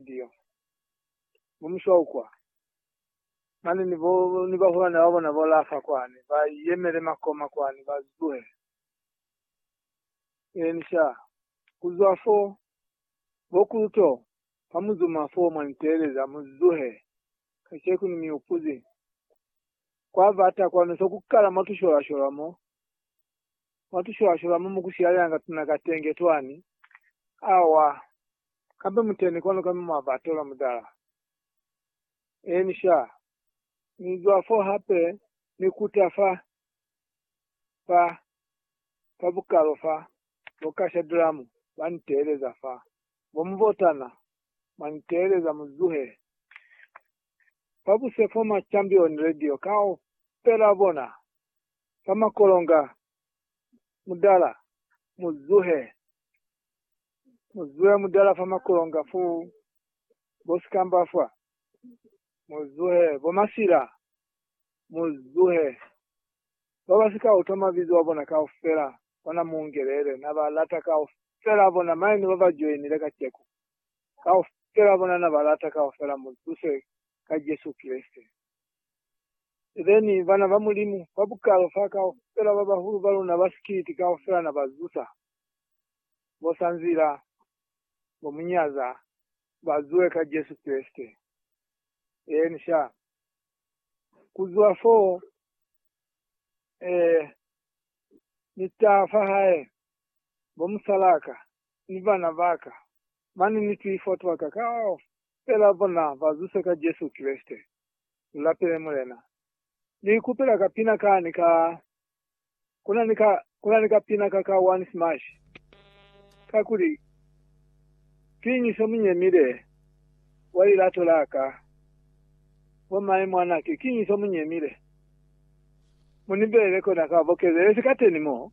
Ndio. Bo Mushaukwa, mane ni bo, ni bahulwane ba bona bo lafa kwani, ba yemele makoma kwani, ba zuhe. Eeni, sha. Ku zwa fo, bo Kuluto, ha mu zuma fo, mwa ni teeleza, mu zuhe, kaceku ni mi upuzi. Kwa bata kwanu so ku kala mwa tusholashola mo, Mwatusholashola hama mukushilayanga tuna katenge twani. Awa. Kambe muteni kwanu kami mwabatola mutala. Eeni, sha. Ni zwa fo hape ni kuta fa, fa, fa bukalo fa, bo kasha dramu ba niteeleza fa. Bo muvotana, mwa niteeleza mu zuhe. Fabuse fo ma Champion Radio kaufela bona ba makolonga mudala mu zuhe mu zuhe mudala fa makolonga fu bo sikamba fa mu zuhe bo masila mu zuhe ba ba sika utwa mabizo a bona kaufela bona mu ngelele na ba lata kaufela bona maenu ba ba joinile kaceku kaufela bona na ba lata kaufela mu zuse ka Jesu Kreste. Then bana ba Mulimu ba bukalo fa kaufela ba bahulu ba luna ba sikiliti kaufela na ba zusa, bo sa nzila, bo mu nyaza, ba zuwe ka Jesu Kreste. Eeni, sha. Ku zwa foo, ee, ni ta fa Hae, bo musalaka, ni bana baka, mane ni twifo twaka kaufela bona bazuse ka Jesu Kreste. Ulapele Mulena. Ni ikupela ka pina ka ni ka, kuna ni ka, kuna ni ka pina ka ka one smash, kakuli kiñi se munyemile wa lilato laka? Bo maye mwanake, kiñi se munyemile? Munibele kona ka bokezelezi kateni mo.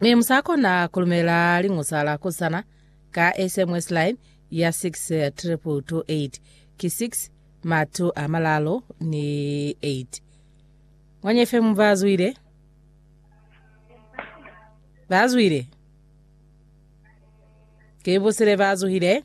Mi musakona kulumela liñusa la kusana ka SMS line ya 62228 ki 6 matu a malalo ni 8. Mwenye FM bazwile. Bazwile. Ke busile bazuhile.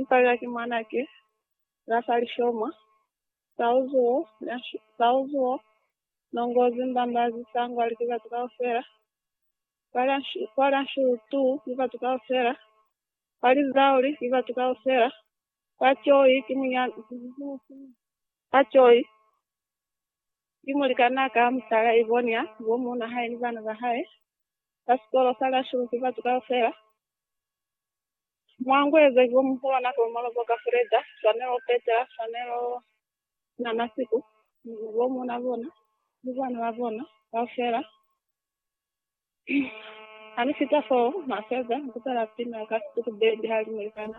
Mpalela ki mwanake la fa lishoma, Sauzuo, Sauzuo, nongozi mbambazi sangwa liki batu kaufela, kwa la Nshutu ki batu kaufela, kwa Lizauli ki batu kaufela, kwa Choi ki munyana, kwa Choi ki mulikana ka mutala Ivonia, bo muuna hae ni bana ba hae, kwa sikolo sa la Shuru ki batu kaufela, Mwangu eza ki omuhulu na tomolo bo ka Freda, swanelo opetela, swanelo na masiku, ni bo muna bona, ni bana ba bona, kaufela. Hane fita foo, maseza, ni kutala pina ka situku bendi halimu likana.